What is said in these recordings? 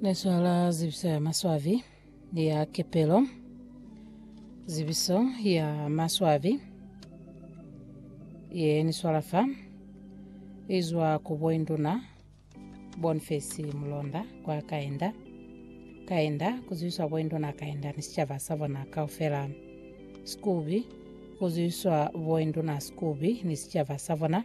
Leswala zibiso ya maswabi ya kepelo. Zibiso ya maswabi ye ni swalafa izwa ku boinduna Boniface Mulonda kwa Kaenda. Kaenda kuzibiswa boinduna Kaenda ni sicaba sa bona kaufela. Sikubi kuzibiswa boinduna Sikubi ni sicaba sa bona.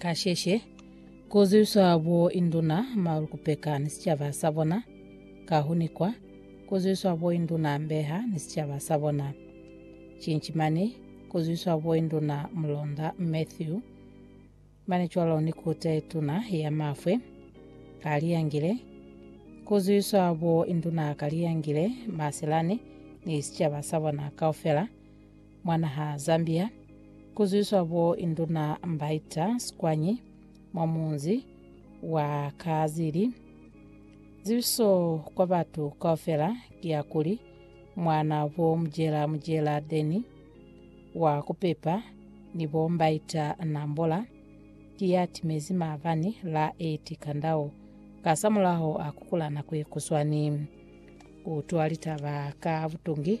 Kasheshe, ku zwiswa bo induna, malukupeka, ni sicaba sa bona, ka hu nikwa, ku zwiswa bo induna, mbeha, ni sicaba sa bona. Cinci mane, ku zwiswa bo induna, mulonda, Matthew, mane cwalo ni kute tuna ya mafwe, ka liyangile, ku zwiswa bo induna ka liyangile, Maselani, ni sicaba sa bona kaufela, mwa naha Zambia, kuzwiswa bo Induna Mbaita Sikwanyi mwa munzi wa Kaazili. Zibiso kwa batu kaufela ki ya kuli, mwana bo Mujela Mujela Denny wa kupepa ni bo Mbaita Nambola ki ya timezi maabani la 8 Kandau kasamulaho a kukula nako ye kuswani. Kutwa litaba ka butungi.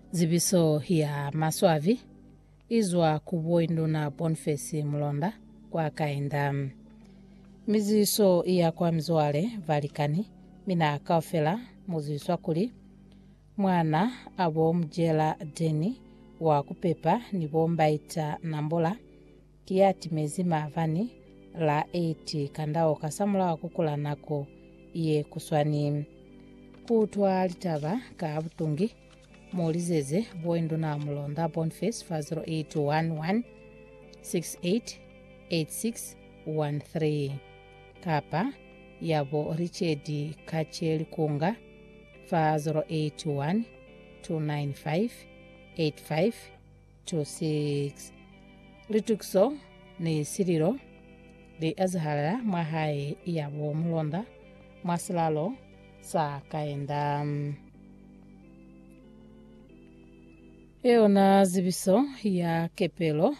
Zibiso ya maswabi i zwa ku Boinduna Bonface Mulonda kwa Kainda. Miziso i ya kwa mizwale, balikani, mi na kaufela mu zwiswa kuli mwana a bo Mujela Denny wa ku pepa ni bo Mbaita Nambola, Ki ya timezi maabani la 8 kandao kasamulaho kukula nako ye kuswani. Ku utwa litaba ka butungi, mu lizeze Boinduna Mulonda Boniface fa 0811 688613 kapa yabo Richard Kache Likunga fa 0812958513. 26. Litukiso ni sililo li ezahala mwa hae ya bo mulonda mwa silalo sa kaenda. Yona zibiso ya kepelo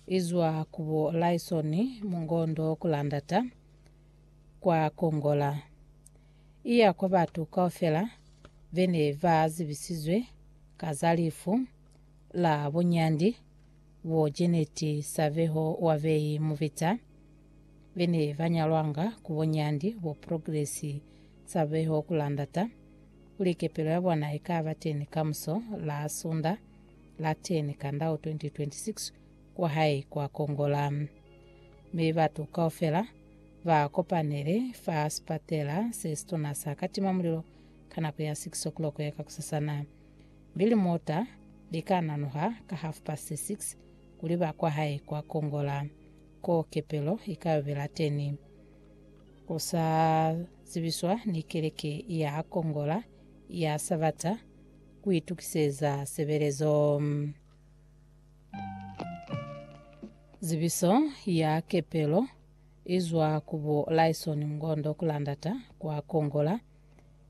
izwa ku bo Lyson Mungondo Kulandata kwa Kongola iya kwa batu kaufela bene ba zibisizwe ka za lifu la bunyandi bo Janet Saveho wa Bay Muvita be ne ba nyalwanga ku bunyandi bo Progress Saveho ku la ndata kuli kepelo ya bona i ka ba teni kamuso la Sunda la 10 Kandau 2026 kwa hae kwa Kongola. Mi batu kaufela ba kopanele fa sipatela se situna sa Katimamulilo ka nako ya 6 o'clock ya kakusasana. Mi limota li ka nanuha ka half past six kuli ba kwa hae kwa Kongola, ko kepelo i ka yo bela teni. Ku sa zibiswa ni keleke ya ha Kongola ya Sabata ku itukiseza sebelezo. Zibiso ya kepelo i zwa ku bo Lyson Ngondo Kulandata kwa Kongola.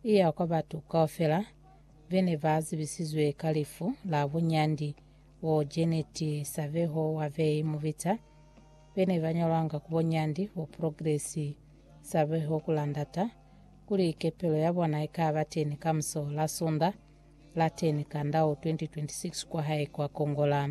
i ya kwa batu kaufela be ne ba zibisizwe ka lifu la bunyandi bo Janet Saveho wa Vei Mubita be ne ba ñolwanga ku bunyandi bo Progress Saveho ku landata kuli kepelo ya bona i ka ba teni kamuso la Sunda la 10 Kandau 2026 kwa hae kwa Kongola.